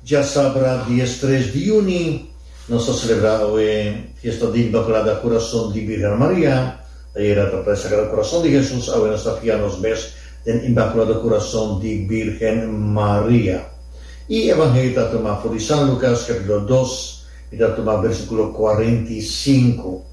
Dja sabra dies tres di juni nos ta selebrá awe fiesta di Inmaculada Kurason di Birhen Maria. Ayera ta e Sagrado Kurason di Hesus, awe nos ta fia nos mes den Inmaculado Kurason di Birhen Maria. I Evangelio ta tuma for di San Lukas capítulo dos, mi ta tuma versiculo kuarenta i sinku.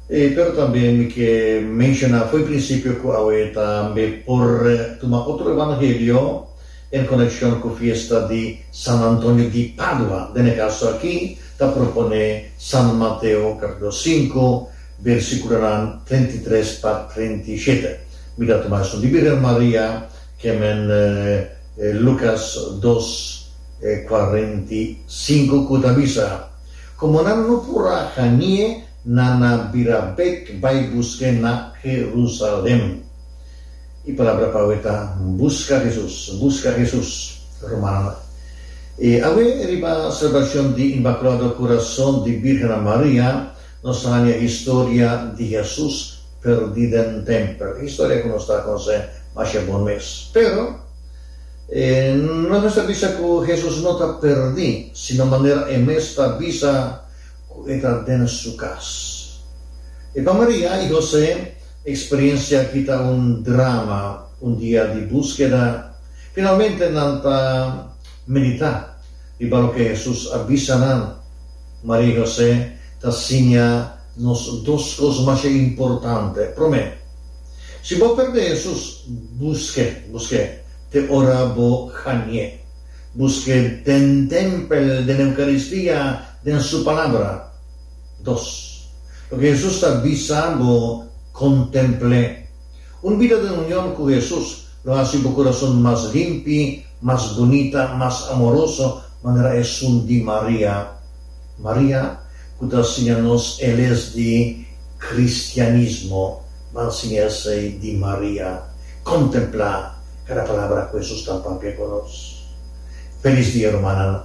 E pero tambe mi ke menshona fo'i prinsipio ku awe tambe por tuma otro evangelio en konekshon ku fiesta di San Antonio di Padua. Den e kaso aki ta proponé San Mateo kapitulo sinku bersikulonan treinta i tres pa treinta i shete. Mi ta tuma esun di Birhen Maria kemen Lukas dos kuarenta i sinku ku ta bisa, Komo nan no por a hani'e, na na bira bek bai busk'é na Herusalèm. E palabra pa awe ta, Buska Hesus, buska Hesus, romano. E awe, riba selebrashon di Inmakulado Kurason di Bírgena Maria, nos ta haña historia di Hesus pèrdí den tèmpel. E historia ku nos ta konsé masha bon mes. Pero, e nos mester bisa ku Hesus no ta pèrdí, sino manera e mes ta bisa, Ku e ta den su kas. E pa Maria i José, e eksperiencia aki ta un drama, un dia di buskeda. Finalmente nan ta medita riba loke Hesus a bisa nan. Maria i José ta siña nos dos kos masha importante. Promé, si bo perde Hesus, buske, buske te ora bo hanié. Buske den tempel, den Eukaristia, Den su palabra. Dos. Loke Hesus ta bisa bo kontempl'é. Un bida den union ku Hesus lo hasi bo kurason mas limpi, mas bunita, mas amoroso, manera esun di Maria. Maria, ku ta siña nos e les di kristianismo, nan siña esei di Maria. Kontemplá kada palabra ku Hesus ta papia ku nos. Felis dia rumannan.